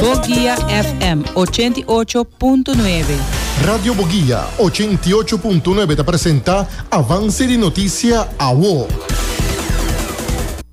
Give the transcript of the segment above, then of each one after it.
Boguia FM ochenta i ocho punto nuebe. Radio Boguia ochenta i ocho punto nuebe ta presenta Avance di Noticia Awo.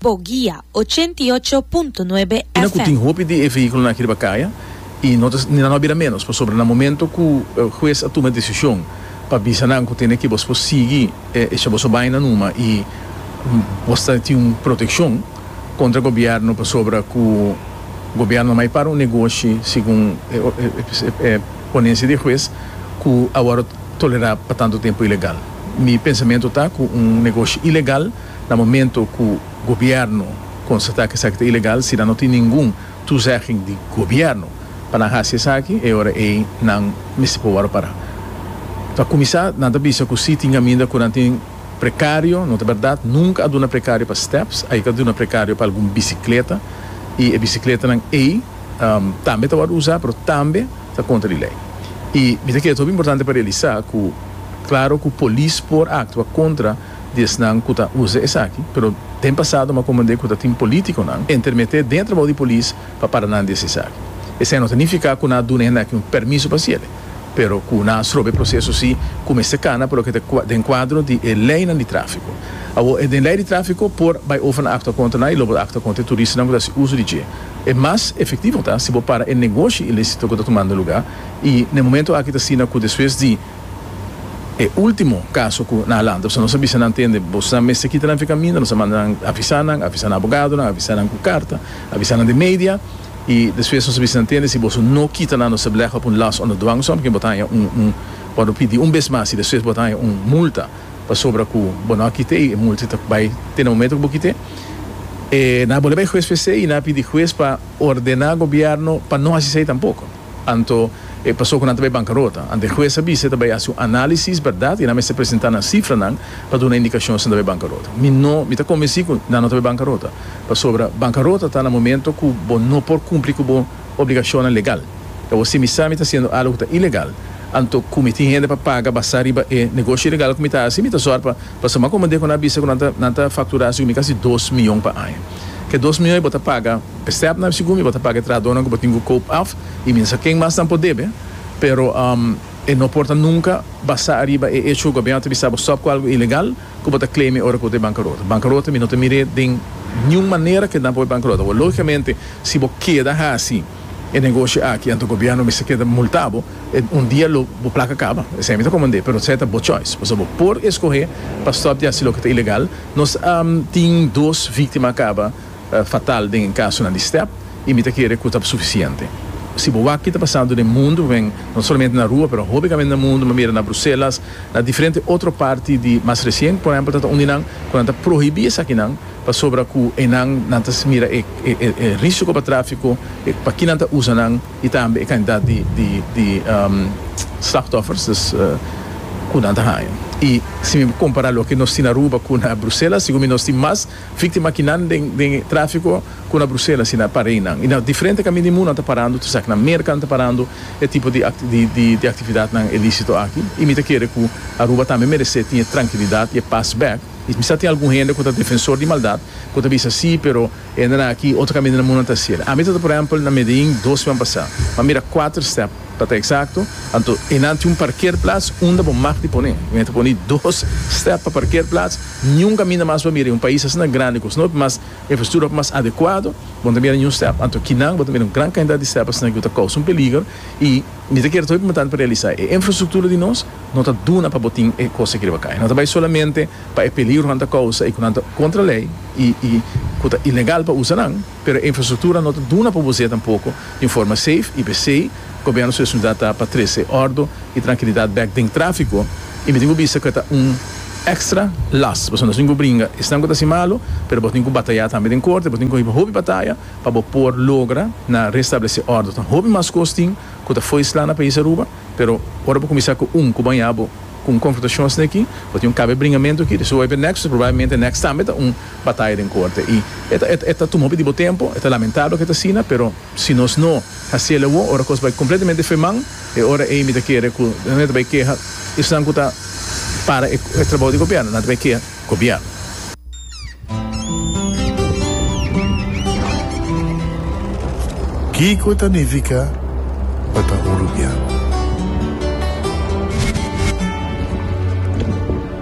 Boguia ochenta i ocho punto nuebe FM. Kina ku tin hopi di e vehíkulonan aki riba kaya i no ta nan a bira ménos pasobra na momento ku hues a tuma e desishon pa bisa nan ku tene ke bos por sigui e esha boso baina numa i bos ta tin un protekshon, Contra gobierno pasobra cu gobierno mai para un negoshi segun e ponencia di huez cu a worde tolera pa tanto tempo ilegal. Mi pensamento ta cu un negoshi ilegal na momento cu gobierno constata cu esaki ta ilegal si nan no tin ningun toezegging di gobierno pa nan haci esaki e ora ey nan mester pa worde para. Pa cuminsa nan ta bisa cu si tin caminda cu nan tin. Precario, no ta berdad, nunca a duna precario pa steps, ai ta duna precario pa algun bicicleta y e bicicletanan ei tambe ta wòrdu usá pero tambe ta contra di ley. Y mi ta kere ta hopi importante pa realisá cu claro cu polis por actua contra di esnan cu ta usa esaki pero den pasado mi a comprende cu ta tin politiconan entermete den trabou di polis pa para nan di ese esaki. Esei no ta nifica cu nan a duna e hende aki un permiso pa haciele. pero cu nan a strobe e proceso si cu mester cana pa loke ta den cuadro di e leynan di trafico. Awor, e den ley di trafico por bay over nan actua contra nan y lo bo ta actua contra e turistanan cu ta haci uso di dje. E mas efectivo ta si bo para e negoshi ilicito cu ta tumando lugar y na e momento aki ta asina cu despues di e ultimo caso cu nan a lanta pasobra nos a bisa nan tende boso nan mester kita nan fi caminda, nos a manda nan avisa nan, avisa nan abogadonan, avisa nan cu carta, avisa nan den media. I despues nos a bisa nan tende si boso no kita nan nos a blegha pun las onder dwang so ken bo ta haña un un por bo pidi un bes mas i despues bo ta haña un multa pasobra ku bo no a kite i e multa ta bai te na momento ku bo kite e nan a bole bai hues p'e esei i nan a pidi hues pa ordená gobièrnu pa no hasi esei tampoko anto e paso ku nan ta bai bankarota anto e hues a bisa e ta bai hasi un análisis bèrdat i nan mester presentá nan sifranan pa duna indikashon si nan ta bai bankarota mi no mi ta kombensí ku nan no ta bai bankarota. pasobra bankarota ta na momento ku bo no por kumpli ku bo obligashonnan legal. E bo si mi sa mi ta hasiendo algu ku ta ilegal, anto ku mi tin hende pa paga basá riba e negoshi ilegal ku mi ta hasi? Mi ta sòrpa pa San Makomon den ku nan a bisa ku nan ta nan ta fakturá sigun mi kasi dos mion pa aña. Ku e dos mion ei bo ta paga e stèpnan sigun mi, bo ta paga e trahadónan ku bo tin ku koop af i mi no sa ken mas nan por debe, pero e no por ta nunka basá ariba e echo ku gobièrnu ta bisa bo stòp ku algu ilegal. Cu bo ta claime ora cu bo ta e bancarota? Bancarota mi no ta mir'e den niun manera que nan por bancarota bo. Logicamente si bo keda haci e negoshi aki anto gobierno mester keda multa bo. E un dia lo bo placa caba. Esey mi ta comand'e. Pero esey ta bo choice. Pasobra bo por escoge pa stop di haci loke ta ilegal. Nos a tin dos victima caba. fatal den e kasonan di stèp i mi ta kere ku ta sufisiente. Si bo wak ki ta pasando den mundu, wen, no solamente na rua pero hopi gamente na mundu, mi mira na Bruselas, na diferente otro parti di mas resien por ehempel ta ta unda nan ku nan ta prohibí esakinan pasobra ku eynan nan ta mira e e risiko pa tráfiko, e pa ki nan ta usa nan i tambe e kantidat di di di slachtoffers, dus, ku nan ta haña. I si mi kompará loke nos tin Aruba ku na Bruselas sigur mi nos tin mas. Víktima ki nan den den e tráfiko ku na Bruselas i na Parijnan i na diferente kami di mundu nan ta parando, tur esaki na Merka nan ta parando e tipo di di di aktividatnan ilísito aki i mi ta kere ku Aruba tambe meresé tin e trankilidat i e pas bèk. I mi sa tin algun hende ku ta defensor di maldat ku ta bisa sí, pero hendenan aki otro kami di nan mundu nan ta hasiel. Ami ta ta, por ehèmpel, na Medellín dos semana pasá, m'a mira kuater stèp. Pa ta eksakto, anto e nan tin un parkeerplats unda bo mag di pone. Mi a ta pone dos stèp pa parkeerplats. Niun kaminda mas bo a mira i un pais asina grandi ku snop, mas infrastruktura pa mas adekuado, bo no ta mira niun stèp. Anto kinan bo ta mira un gran kantidat di stèp asina ku ta kousa un peliger. I mi ta kere ta hopi importante pa realisá e infrastruktura di nos no ta duna pa bo tin e kos aki riba kai. No ta bai solamente pa e peligro ku nan ta kousa i ku nan ta kontra lei i ku ta ilegal pa usa nan. Pero e infrastruktura no ta duna pa bo zeta poko den forma seif i p'esei Gobernu su responsabilidat ta pa trese ordo i trankilidat bek den trafiko i mi tin ku bisa ku e ta un ekstra las pasobra nos tin ku bringa esnan ku ta hasi malu pero bo tin ku bataya tambe den korte bo tin ku hiba hopi bataya pa bo por logra na restablese ordo tan hopi mas kos tin ku ta fo'i sla na pais Aruba pero ora bo kuminsá ku un ku baña bo ku un konfrontashon sneki bo tin un kabe bringamentu aki di su wou e benèk su probablemente e nèks tambe ta un. bataya den corte y e ta tuma hopi di bo tempo, e ta lamentable cu e ta asina, pero si nos no haciel awor, ora cos bay completamente feman, e ora ey mi ta kere cu nan e ta bay keha esnan cu ta para e trabou di gobierno, nan ta bay keha gobierno. Kico ta nifica pa ta un rubiano?